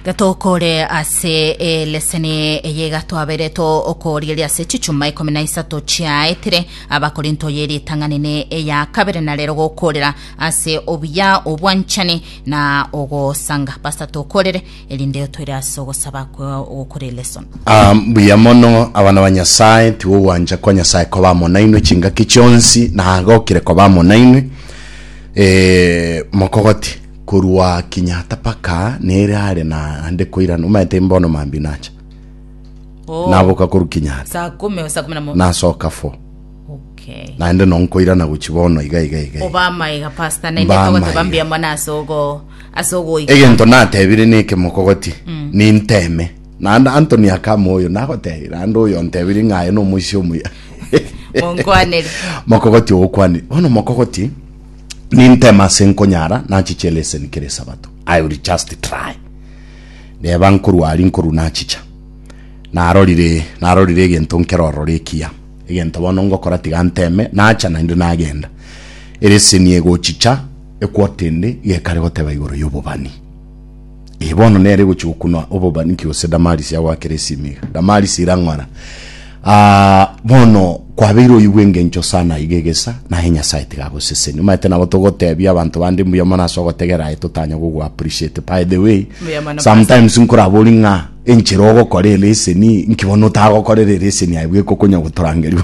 gatokore ase eleseni eye gatwabere to okorigeria ase chichuma ikomi na isato chiaetire abakorinto ye ritang'ani ne eya kabere na rero gokorera ase obuya obwanchani na ogosanga pastor tokorere erinde otoire ase ogosaba kwa ogokora elesoni Ah, mbuya mono abana ba nyasaye tigo gwancha kwa nyasaye koba amo nainwe chingaki chionsi nagokire koba amo nainwe Eh, mokogoti Korwa Kenyatta paka nere are na ande koirana omanyete mbono mambi nacha Oh, naboka korwa Kenyatta saa kumi o saa kumi na mo nasoka fo okay naende no nkoirana gochi bono iga iga iga iga. oba amaega pasta naende Mba togote amaega. bambia mwana ase ogo ase ogoika egento natebire neke mokogoti ninteme naende antoni akama oyo nagotebire naende oyo ontebire ng'aye nomoisia omuya monkwanere mokogoti ogokwanire bono mokogoti Ninteme ase nkonyara nachiche eleseni kera esabato. I will just try. Reba nkorwa aria nkorwa nachicha. Narorire narorire egento nkero ororo ekiya. Egento bono ngokora tiga nteme nacha naende nagenda. Eleseni egochicha ekwotende gekare goteba igoro yobobani. Ee, bono nere gochia gokunwa obobani ki gose Damarisi agwakere esimiga. Damarisi irang'ora. Ah, bono kwabeire oyigwe engencho sana iga egesa, naye Nyasaye tiga agoseseni. Omaete nabo togotebia abanto bande mbuya mono ase ogotegera aye totanya gogo appreciate. By the way, Mbuya mono, sometimes nkorabori ng'a enchera ogokora ereseni, nki bono otagokorera ereseni aye bweka okonya gotorangeria.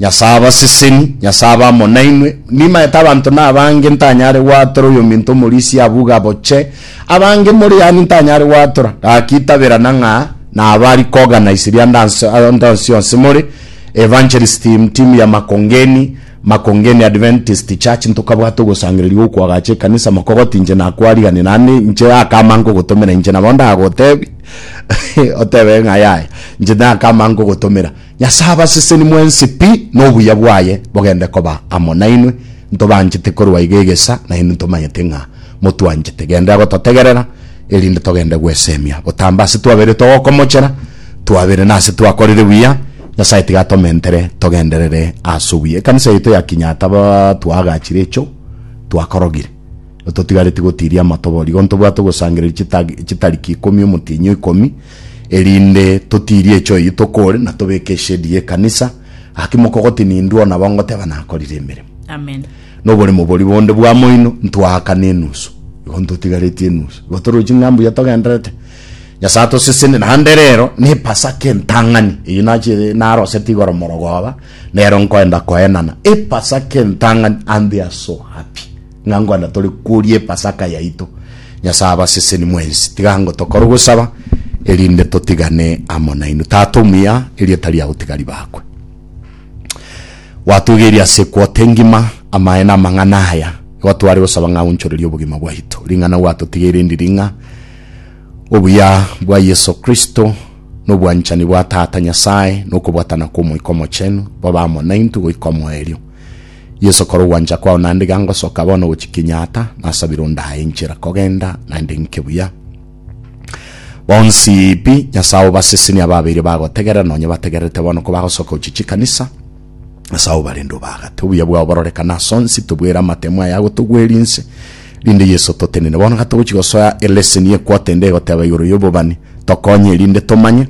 Nyasae abaseseni, Nyasae abe amo nainwe. Nimaete abanto nabange ntanyare gwatora oyominto omorisia abuga boche abange more yani ntanyare gwatora. Gaki taberana ng'a naba ari koganise ria ndanso ndansi yonsi more Evangelist team team ya Makongeni Makongeni Adventist Church ntokabwate ogosangereria gokwagacha ekanisa mokogoti inche nakwarigani nande inche akama nkogotomera inche nabo ndagotebi otebe ng'a yaya inche nakama nkogotomera Nyasae abaseseni mwensi pi, na obuya bwaye bogende koba amo nainwe. Ntobanchete korwa iga egesa, nainwe ntomanyete ng'a motwanchete. Genda gototegerera, erinde togende gwesemia. Botambe ase twabere togokomochera, twabere nase twakorire buya, Nyasae tiga atomentere togenderere ase obuya. Ekanisa yaito ya Kinyata ba twaagachire echo twakorogire. Totigareti gotiria amatobori. Igo ntobwate ogosangereria chitag chitariki ikomi omotienyi o ikomi. erinde totirie echoyo eye tokore na tobeke eshedi y'ekanisa, gaki mokogotini indwe ona bo ngoteba nakorire emeremo. Amen. Noboremo boria bonde bwamoino ntwaakana enusu, igo ntotigareti enusu, igo torochi ng'a mbuya togenderete. Nyasae atoseseni, naende rero n'Epasaka entang'ani, eyio nachiete naroseti igoro morogoba, nero nkoenda koenana Epasaka entang'ani, and they are so happy. Ng'a nkwana tore koria Epasaka yaito, Nyasae abaseseni mwensi, tiga ngo tokore ogosaba, erinde totigane amo nainwe. Tata omuya, erieta riao tiga ribakwe. Gwatogeirie ase ekwoto engima amaene amang'ana aya, igo tware gosaba ng'a aunchorerie obogima bwaito. Ring'ana gwatotigeire ndiri ng'a obuya bwa Yeso Kristo, na obwanchani bwa Tata Nyasae, na okobwatana kw'Omoika Omochenu bobe amo naintwe goika omoerio. Yeso, kora ogwancha kwao naende iga ngosoka bono gochia Kenyatta, nasabire ondaye enchera kogenda naende nke buya. Bonsi pi Nyasae obasesenie ababeire bagotegerera nonye bategererete bono kobagosoka gochia chikanisa. Nyasae obarende obaagate. Obuya bwao bororekane asonsi, tobwere amatemo aya agotogweria inse, rinde Yeso totenene. Bono gatogochia gosoa eleseni ye quarter ende egoteba igoro y'obobani, tokonye erinde tomanye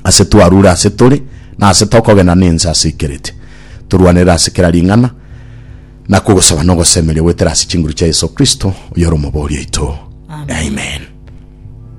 ase twarure ase tore, na ase tokogena nense ase ikerete. torwanerere ase kera ring'ana, na kogosaba nogosemeria goetera ase chinguru chia Yeso Kristo, oyore Omobori oito. Amen.